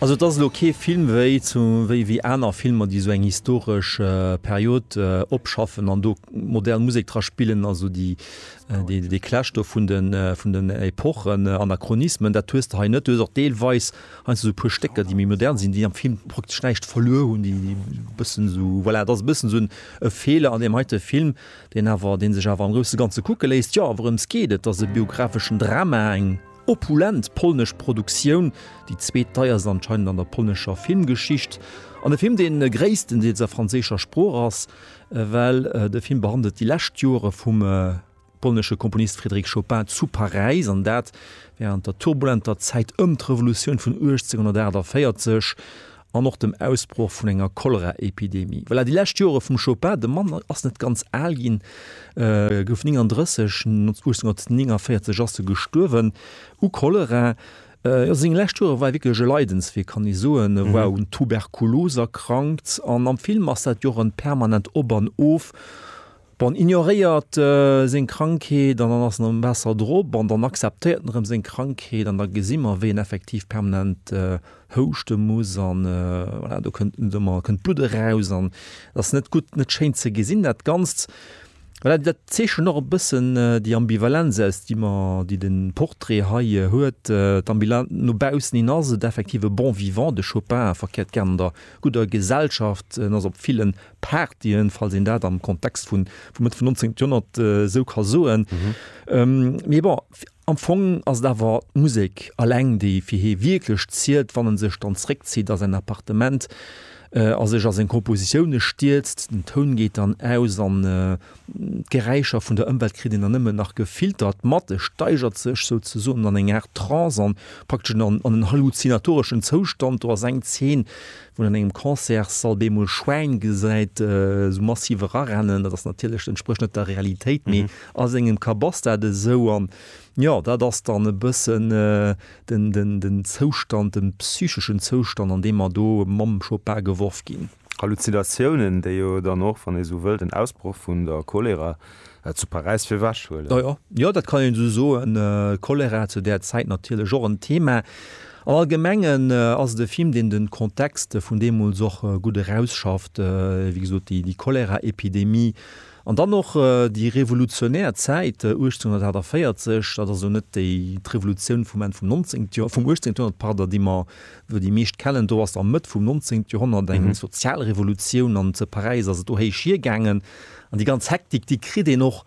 Also et ass elo kee Film wéi zu wéi wéi aner Filmer, déi esou eng historesch Period opschaffen an do modern Musek dra spillen, also déi déi dee Clash do vun den vun den Epochen, Anachronismen, dat hues de hei net. Du hues och deelweis heiansdo esou e puer Stécker, déi méi modern sinn, déi am Film praktesch näischt verluer hunn, déi e bëssen esou, voilà, et ass e bëssen esou en e Feeler an deem heite Film, deen awer dee sech awer am grousse Ganze kucke léisst. Jo, wourëms geet et? Et ass e biographeschen Drama, eng. Opulent polnesch Produktioun, déi zweet deierst anscheinend an der polnescher Filmgeschicht, an e Film, dee gréisstendeels a franséischer Sprooch ass, well de Film behandelt déi lescht Jore vum polnesche Komponist Frédéric Chopin zu Paräis, an dat wärend der turbulenter Zäit ëm d'Revolutioun vun 1848. an och dem Ausbroch vun enger Choleraepidemie. Voilà, déi lescht Jore vum Chopin, de Mann ass net ganz al ginn, gouf 39, 1849 ass e gestuerwen u Cholera. Jo, seng lescht Jore war wierklech e Leidenswee, kann ee soen. E war un Tuberkulos erkrankt an am Film ass dat jo och en permanent Op an Of. Bon, ignoréiert seng Krankheet an dann ass en am Waasser drop an dann akzeptéiert en erëm seng Krankheet an da gesi mer, wéi en effektiv permanent houschte muss an, voilà, do kënnt net ëmmer, kënnt d'Blutt eraus an et ass net gutt, net schéin ze gesinn, dat Ganzt. Voilà, dat zeechent och e bëssen déi Ambivalenz aus, déi mer, déi de Portrait hei huet. D'Ambila, no baussen hin ass et effektiv e Bon vivant, de Chopin, a verkéiert gären an der gudder Gesellschaft, en ass op villen Partyen, falls een dat am Kontext vun vum Mëtt vum 19. Joerhonnert esou ka soen. Mee bon, am Fong ass et awer d'Musek eleng, déi fir hie wierklech zielt, wann e sech dann zréckzitt a säin Appartement a sech a seng Kompositioune stierzt. Den Toun geet dann aus an d'Geräischer vun der Ëmwelt kritt een dann nëmmen nach gefiltert mat. E steigert sech souzesoen an eng Aart Trance an praktesch an en halluzinatoreschen Zoustand. Do ass eng Zeen, wou een an engem Concertssall bemol Schwäin gesäit esou massiv erarennen, dat ass natierlech, dat entsprécht net der Realitéit, mee a sengem Kapp ass dat esou. An jo, dat ass dann e bëssen den, den, den Zoustand, de psycheschen Zoustand, an deem mer do mam Chopin geworf ginn. Halluzinatiounen, déi jo dann och, wann ee esou wëllt, en Ausbroch vun der Cholera Zu Paräis fir wech huelen. Jo, jo, dat kann een esou soen. Cholera zu där Zäit natierlech och en Thema. Am Allgemengen ass et e Film, deen de Kontext vun deemools och gutt erausschafft, wéi gesot, déi Cholera-Epidemie an dann och déi revolutionär Zäit 1848. Dat ass elo net déi d'Revolutioun vum Enn vum Nonzéngte Joer, vum Uechtzéngte Joerhonnert, pardon, déi mer elo déi meescht kennen. Do ass a Mëtt vum Nonzéngte Joerhonnert eng Sozialrevolutioun an zu Paräis ass et do héich hiergaangen. An déi ganz Hektik, déi kritt een och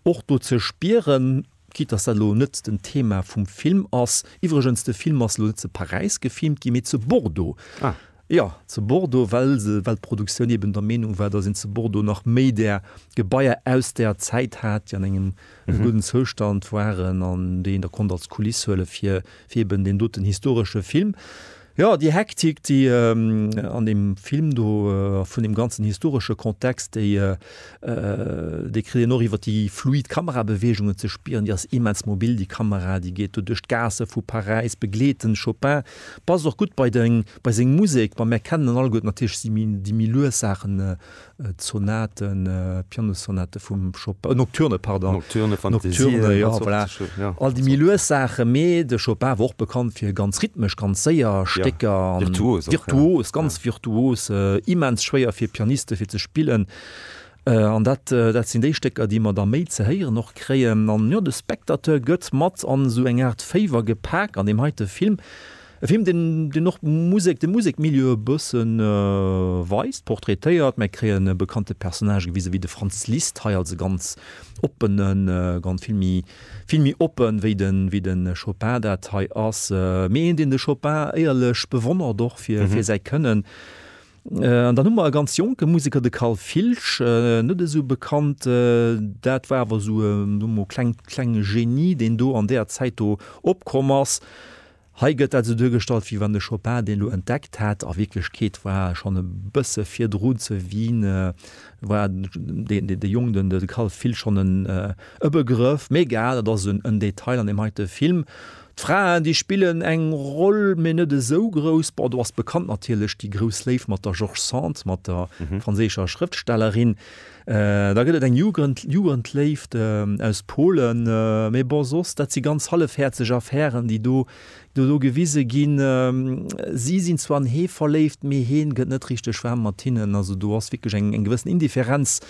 och do ze spieren, quitte dass dat elo net den Thema vum Film ass. Iwwregens, de Film ass elo net zu Paräis gefilmt ginn, mee zu Bordeaux. Ah. Jo, zu Bordeaux, well se, well d'Produktioun eben der Meenung war, dass een zu Bordeaux nach méi där Gebaier aus där Zäit hat, déi an engem gudden Zoustand waren an déi een da konnt als Kuliss huele fir, fir eben deen doten historesche Film. Jo, déi Hektik, déi an deem Film do, a vun deem ganzen historesche Kontext, déi déi kritt een och iwwer déi fluid Kamerabeweegungen ze spieren. Déi ass immens mobil, déi Kamera. Déi geet do duerch d'Gaasse vu Paräis, begleet den Chopin, passt och gutt bei de, bei seng Musek. Mä mir kennen en alleguerten natierlech déi méi lues Saachen D'Sonaten, d'Pianosonate vum Chopin, Nocturne, pardon. Nocturne, Fantasien, Nocturne, ja, dat voilà. Sort, ja. All déi méi lues Saachen, mee de Chopin war och bekannt fir ganz rhythmesch, ganz séier Stécker. Ja, virtuos och. Virtuos, ja. ganz virtuos, immens schwéier fir Pianiste fir ze spillen. An dat, dat sinn déi Stécker, déi mer da méi ze héieren och kréien. An jo, de Spectateur gëtt mat an esou eng Aart Féiwer gepak an deem heite Film. E Film, deen och d'Musek, de Musekmilieu e bësse weist, portraitéiert. Mir kréien e bekannte Personnage gewise wéi de Franz Liszt, hei als e ganz oppene, ganz, vill méi, vill méi oppe wéi de, wéi de Chopin dat hei ass, mee een, deen de Chopin éierlech bewonnert och fir, fir säi Kënnen. An dann hu mer e ganz jonke Museker, de Carl Filsch, net esou bekannt. Dat war awer esou e, soe mer mol, klengt, klenge Genie, deen do an deeër Zäit do opkomm ass. Hei gëtt dat esou duergestallt, wéi wann de Chopin deen elo entdeckt hätt. A Wierklechkeet war e schonn e bësse virdru ze Wien, war dee de Jong, den de Kall fillt, schonn en e Begrëff. Mee egal, dat ass en Detail an deem heite Film. D'Fraen, déi spillen eng Roll, mee net esou grouss. Bon, do ass bekannt natierlech déi grouss Léift mat der George Sand, mat der franséischer Schrëftstellerin. Da gëtt et eng Jugendléift aus Polen. Mee bon, soss, dat si ganz hallefhäerzeg Affären, déi do do gewise ginn. Si sinn zwar an hee verléift, mee heen gëtt net richteg waarm mat hinnen. Also do ass wierklech eng eng gewëssen Indifferenz.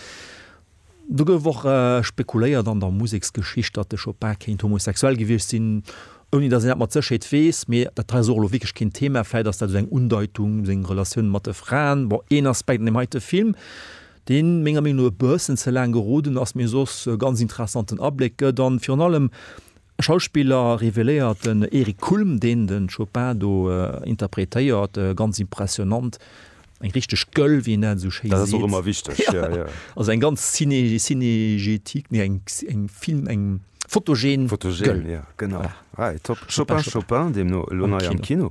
Do gouf och spekuléiert an der Museksgeschicht, datt de Chopin kéint homosexuell gewiescht sinn, ouni datt een dat mat Sécherheet weess. Mee dat hei ass och elo wierklech keen Thema. Vläit ass dat esou eng Undeitung, seng Relatioun mat de Fraen. Bon, een Aspekt an deem heite Film. deen menger Meenung no e bëssen ze laang geroden ass, mee soss e ganz interessanten Abléck gëtt an virun allem Schauspiller reveléiert. Den Eric Kulm, deen de Chopin do interpretéiert, ganz impressionant, eng richteg Gueule, wéi een dat esou schéi seet. Dat ass och ëmmer wichteg, jo, jo. Also eng ganz cinégétique, nee, eng Film, eng fotogen Gueule. Fotogen, jo, genau. Top. Chopin, Chopin, deemno elo nei am Kino.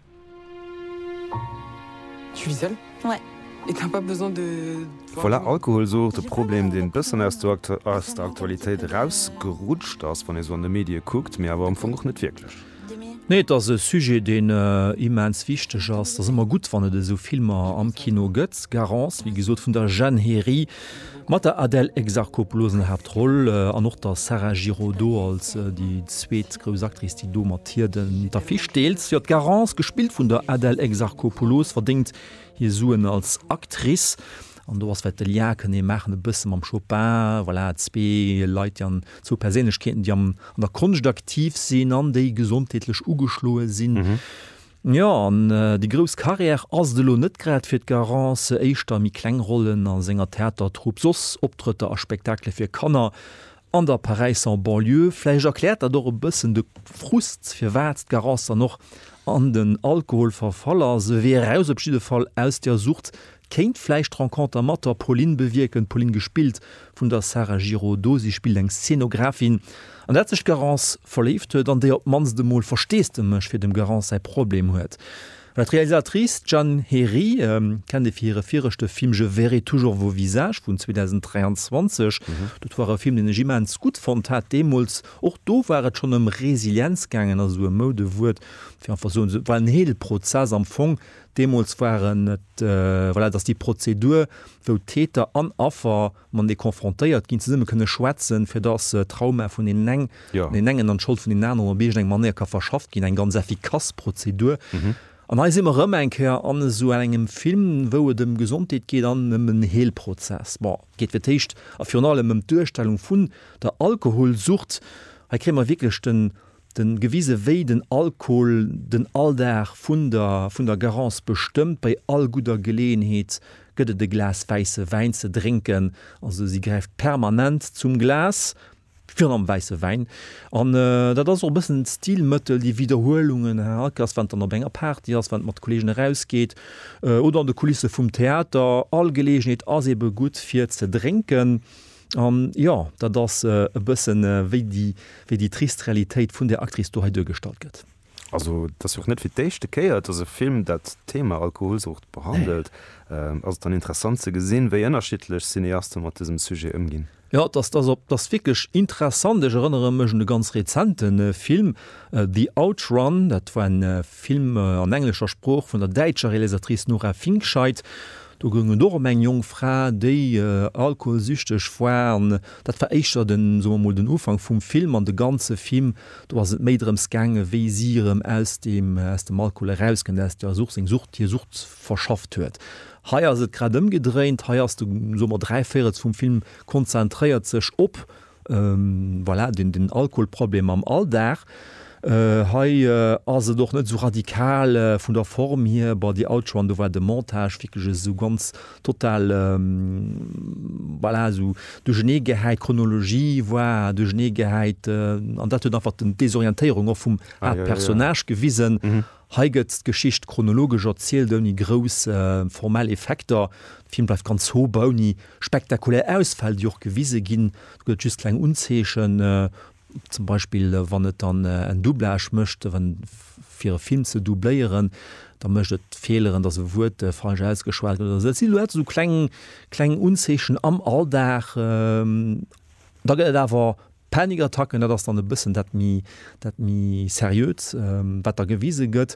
Voilà, Alkohol ass och e Problem, deen e bëssen aus der Aktualitéit erausgerutscht ass, wann ee sou an de Medie kuckt, mee awer am Fong och net wierklech. Nee, et ass e Sujet, deen immens wichteg ass. Et ass ëmmer gutt, wann et esou Filmer am Kino gëtt. Garance, wéi gesot, vun der Jeanne Héry. Mat der Adèle Exarchopoulos an der Haaptroll an och der Sarah Giraudot als déi zweet grouss Actrice, déi do mat hir d'Affiche deelt. Jo, d'Garance, gespillt vun der Adèle Exarchopoulos, verdéngt hir Suen als Actrice. An do ass wäert de Lien kënnen ee maachen e bësse mam Chopin. Voilà, zwee Leit, déi an, zwou Perséinlechkeeten, déi am, an der Konscht aktiv sinn an déi gesondheetlech ugeschloe sinn. Jo, an déi grouss Carrière ass et elo net grad fir d'Garance, éischter méi kleng Rollen a senger Theatertrupp, soss Optrëtter a Spektakele fir Kanner an der Paräisser Banlieue. Vläicht erkläert dat och e bëssen de Frust, firwat d'Garance dann och an den Alkohol verfall ass, e Wee eraus op jidde Fall aus der Sucht Kéint vläicht d'Renconter mat der Pauline bewierken, d'Pauline gespillt vun der Sarah Giraudot. Si spillt eng Szenografin, an dat sech d'Garance verléift huet, an déi op d'mannst emol Versteesdemech fir dem Garance säi Problem huet. Well d'Realisatrice Jeanne Héry kennt ee fir hire viregte Film Je verrai toujours vos visages vun 2023. Dat war e Film, deen ech immens gutt fonnt hat deemools. Och do war et schonn ëm Resilienz gaangen, also e Moudewuert, fir einfach soen, et war en Heelprozess am Fong, Deemools waren et, voilà, et ass déi Prozedur, wou Täter an Affer matenee konfrontéiert ginn, zesummen kënne schwätzen, fir dass d'Trauma vun deenen eng, vun deenen engen an d'Schold vun deenen aneren op iergend eng Manéier ka verschafft ginn, eng ganz effikass Prozedur. An hei si mer erëm eng Kéier an esou engem Film, wou et ëm Gesondheet geet an ëm en Heelprozess. Bon, et geet fir d'éischt a virun allem ëm d'Duerstellung vun der Alkoholsucht. Hei kréie mer wierklech den, den gewise wéi den Alkohol den Alldag vun der vun der Garance bestëmmt, bei all gudder Geleeënheet gëtt et e Glas wäisse Wäin ze drénken, also si gräift permanent zum Glas, virun allem wäisse Wäin, an dat ass och e bëssen d'Stilmëttel, déi Widderhuelungen, ha ke ass, wann et dann op enger Party ass, wann et mat Kolleegen erausgeet oder an de Kulisse vum Theater, all Geleeënheet ass ebe gutt fir ze drénken. An jo, dat ass e bëssen wéi déi trist Realitéit vun där Actrice do hei duergestallt gëtt. Also et ass jo och net fir d'éischte Kéier, dass e Film dat Thema Alkoholsucht behandelt. Ass et dann interessant ze gesinn, wéi ënnerschiddlech Cineaste mat dësem Sujet ëmginn. Jo, dat ass wierklech interessant. Ech erënnere mech un e ganz rezente Film, The Outrun. Dat war e Film an englescher Sprooch vun der däitscher Realisatrice Nora Finkscheid. Do goung et och ëm eng jonk Fra, déi alkoholsüchteg war. An dat war éischter den, soe mer mol, den Ufank vum Film. An de ganze Fim, do ass et méi drëms gaangen, wéi si erëm aus deem, aus dem Alkohol erauskënnt, aus där Sucht, seng Sucht, hir Sucht verschafft huet. Hei ass et grad ëmgedréint. Hei ass de, soe mer, dräi Véirels vum Film konzentréiert sech op Voilà, den Alkoholproblem am Alldag. Hei ass et och net esou radikal vun der Form hier, bon déi alt Joan, do war de Montage wierklech esou ganz total, voilà, esou duercheneegehäit, d'Chronologie war duercheneegehäit an dat huet einfach d'Desorientéierung och vum Haaptpersonnage gewisen. Hei gëtt d'Geschicht chronologesch erzielt, ouni grouss formell Effekter. De Film bleift ganz sober, ouni spektakulär Ausfäll, déi och gewise ginn. Do gëtt et just kleng Unzeechen, zum Beispill wann et dann en Doublage mécht, fir e Film ze doubléieren, da mécht et Feeleren, datt e Wuert falsch ausgeschwat gëtt oder esou. Et si lauter esou kleng Unzeechen am Alldag. Da gëtt et awer Panikattacken, dat ass dann e bëssen dat méi, dat méi seriöt, wat da gewise gëtt,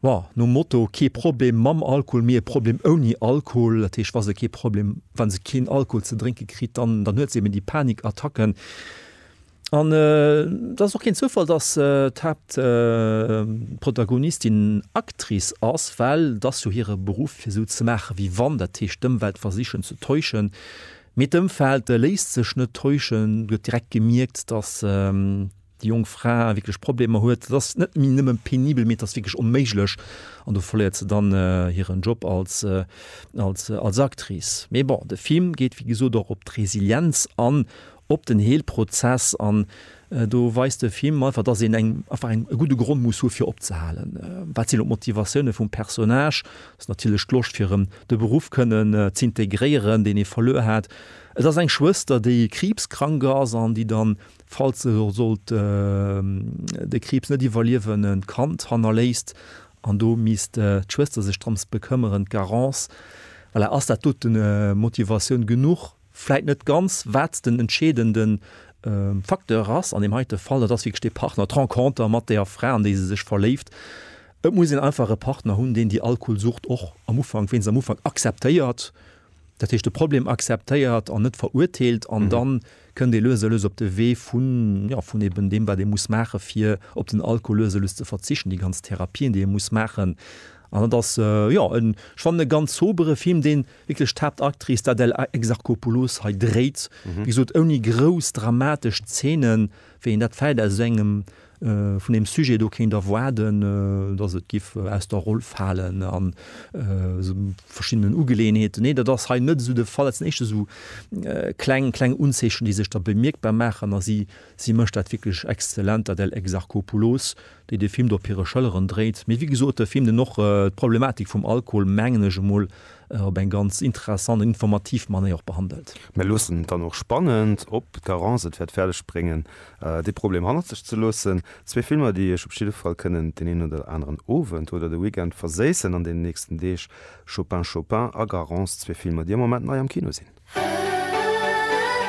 jo, nom Motto, kee Problem mam Alkohol, mee e Problem ouni Alkohol. Dat heescht, wa se kee Problem, wa se keen Alkohol ze drénke kritt, dann, dann huet se eben déi Panikattacken. An et ass och keen Zoufall, datt d'Haaptprotagonistin Actrice ass, well et ass jo hire Beruff, fir esou ze maachen, wéi wann, dat heescht d'Ëmwelt versichen ze täuschen, Mee d'Ëmfeld léisst sech net täuschen, et gëtt direkt gemierkt, datt déi jonk Fra wierklech Problemer huet. Et ass net méi nëmme penibel, mee et ass wierklech onméiglech an do verléiert se dann hiren Job als Actrice. Mee bon, de Film geet wéi gesot och op d'Resilienz an, op den Heelprozess an. Do weist de Film einfach, dass een eng einfach eng e gudde Grond muss hu fir opzehalen. Wat sinn och d'Motivatioune vum Personnage? Ass natierlech d'Loscht fir erëm de Beruff kënnen z'integréieren, deen ee verluer hat. Et ass eng Schwëster, déi kriibskrank ass an déi dann, falls se sollt de Kriibs net iwwerliewen, e Kand hannerléisst an do misst d'Schwëster sech drëms bekëmmeren, d'Garance. Voilà, ass dat doten Motivatioun genuch? vläit net ganz, wat den entscheedende Facteur ass an deem heite Fall, dat ass wierklech dee Partner, d'Renconter mat där Fra, an déi se sech verléift. Et muss een einfach e Partner hunn, deen déi Alkoholsucht och am Ufank, wéinst am Ufank akzeptéiert, dat heescht de Problem akzeptéiert an net verurteelt, an da kënnt ee lues a lues op de Wee vun, jo, vun eben deem, wat ee muss maache fir op den Alkohol lues a lues ze verzichten, déi ganz Therapien, déi ee muss maachen. An dat ass, jo, ech fannen e ganz sobere Film, deen. Wierklech d'Haaptactrice, d'Adèle Exarchopoulos, hei dréit, wéi gesot, ouni grouss dramatesch Zeenen, wéi een dat vläicht aus esou engem, vun deem Sujet do kéint erwaarden, datt et giff aus der Roll falen a sou verschiddenen Ugeleeënheeten. Nee, dat ass hei net esou de Fall. Et sinn éischter esou kleng, kleng Unzeechen, déi sech da bemierkbar maachen a si, si mécht dat wierklech exzellent, d'Adèle Exarchopoulos. déi de Film do op hire Schëlleren dréit, mee wéi gesot, e Film deen och d'Problematik vum Alkohol, mengen ech emol, op eng ganz interessant an informativ Manéier och behandelt. Mir loossen dann och spannend, ob d'Garance et wäert fäerdeg bréngen dee Problem hannert sech ze loossen. Zwee Filmer déi iech op jidde Fall kënnen deen een oder aneren Owend oder de Weekend verséissen an den nächsten Deeg, Chopin Chopin a Garance, zwee Filmer déi am Moment nei am Kino sinn.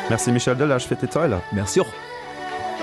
Merci Michel Delage fir d'Detailer. Merci och.